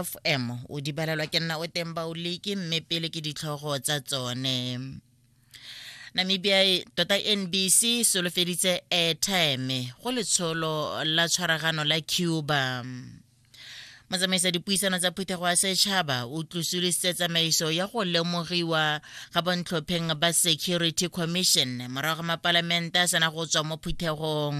fm o di balelwa ke nna o teng baoliki mme pele ke ditlhogo tsa tsone namibia e, tota nbc e solofeditse airtime go letsholo la tshwaragano la cuba motsamaisa dipuisano tsa phuthego ya setšhaba o tlosolositse tsamaiso ya go lemogiwa ga bontlhopheng ba security commission morago ga mapalamente a sena go tswa mo phuthegong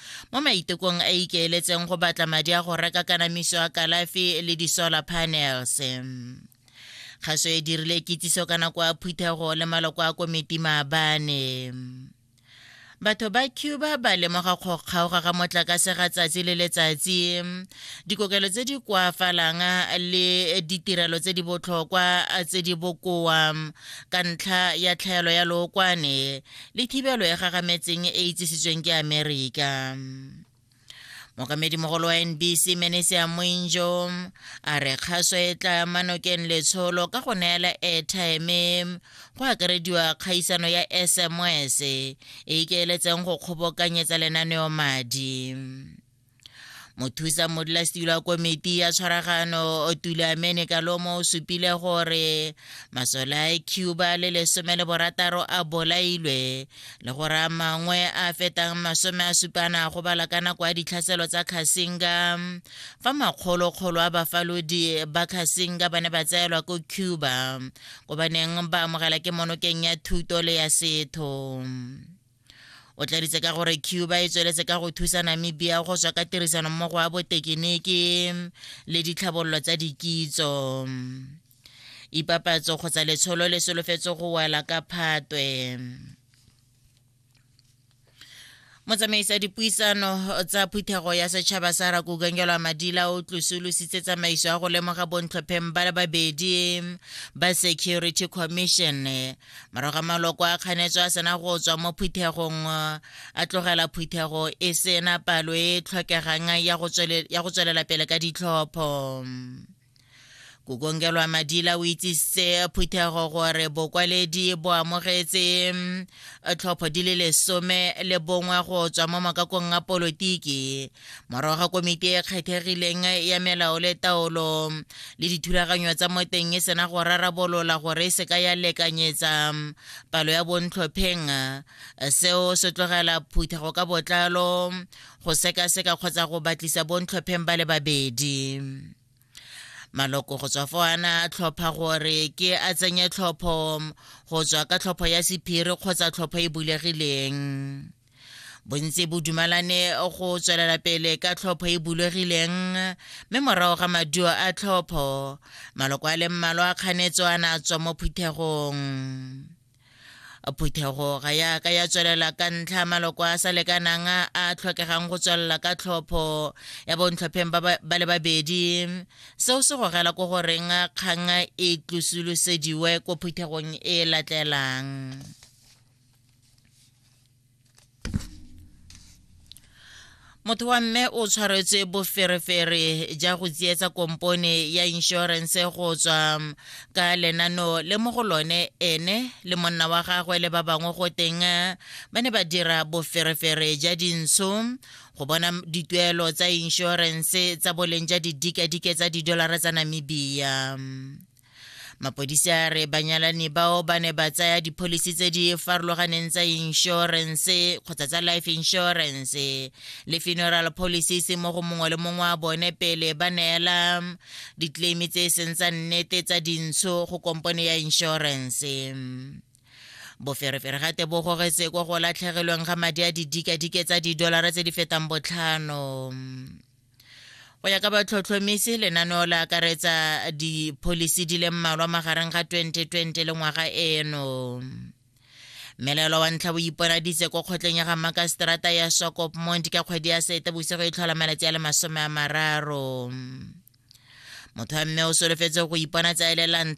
mo maitekong a ikeeletseng go batla madi a go reka kanamiso ya kalafi le di-solar panels kgaso e dirile kitsiso ka nako ya phuthego le maloko a komiti maabane batho ba cuba ba lemoga go kgaoga ga motlakase ga tsatsi le letsatsi dikokelo tse di koafalang le ditirelo tse di botlhokwa tse di bokoa ka ntlha ya tlhaelo ya lookwane le thibelo e gagametseng e itsisitsweng ke amerika mokamedi mogolo wa nbc menesia moinjo a re kgaso e tla manokeng letsholo ka go neela airtime go akarediwa kgaisano ya sms e ikeeletseng go kgobokanyetsa lenaneo madi mothusa modulasetilo wa komiti ya tshwaragano tulamene kalomo o supile gore masole a cuba le lesome le borataro a bolailwe le gore a mangwe a fetang masome a supana go bala ka nako ya ditlhaselo tsa khasinga fa makgolokgolo a bafalodi ba khasinga ba ne ba tseelwa ko cuba ko ba neng ba amogela ke monokeng ya thuto le ya setho o tladitse ka gore cuba e tsweletse ka go thusa namibia go tswa ka tirisano mmogo wa botekiniki le ditlhabololo tsa dikitso ipapatso kgotsa letsholo le solofetse go wela ka phatwe motsamaisa dipuisano tsa phuthego ya setšhaba sa rakukengelwa madila o tlosolositse tsamaiso ya go lemoga bontlhopheng ba le babedi ba security commission morago ga maloko a kganetso a sena go tswa mo phuthegong a tlogela phuthego e sena palo e e tlhokegang ya go tswelela pele ka ditlhopho kokongelwa madila o itsisitse phuthego gore bokwaledi bo amogetse mm, tlhopho di le lesome le bongwe go tswa mo makakong a polotiki morago ga komiti e kgethegileng ya melao le taolo le dithulaganyo tsa mo teng e sena go rarabolola gore e seka ya lekanyetsa palo ya bontlhopheng seo se tlogela phutha go ka botlalo go sekaseka kgotsa go batlisa bontlhopheng ba le babedi maloko go tswa fo ana a tlhopha gore ke a tsenye tlhopho go tswa ka tlhopho ya sephiri kgotsa tlhopho e bulegileng bontsi bo dumalane go tswelela pele ka tlhopho e bulegileng mme morago ga maduo a tlhopho maloko a le mmalwa a kganetso a na tswa mo phuthegong phuthego ga yaka ya tswelela ka ntlha maloko a sa lekanang a tlhokegang go tswelela ka tlhopho ya bontlhopheng ba le babedi seo se gogela ko goreng kgang e tlosolosediwe ko phuthegong e latelang motho wa mme o tshwaretswe boferefere ja go tsietsa kompone ya inšorense go tswa um, ka lenano le mo go lone ene le monna wa gagwe le ba bangwe go teng uh, ba ne ba dira boferefere ja dintsho go bona dituelo tsa inšorense tsa boleng ja didikadike tsa didolara tsa namibia mapodisi a re banyalani bao ba ne ba tsaya dipholisi tse di farologaneng tsa inšorense kgotsa tsa life insurance le funeral policies mo go mongwe le mongwe wa bone pele ba neela ditleimi tse e seng tsa nnete tsa dintsho go kompone ya inšorense boferefere gate bo gogetse ko go latlhegelweng ga madi a didikadike tsa didolara tse di fetang botlhano go ya ka batlhotlhomisi lenaneo le akaretsa dipholisi di le mmalwa magareng ga 2020 le ngwaga eno mmelelo wa ntlha bo iponaditse ko kgotleng ya ga makaseterata ya sokop mont ka kgwedi ya sete bosigo e tlhola malatsi a le masome a mararo motho wa mme o solofetse go ipona tsa elelang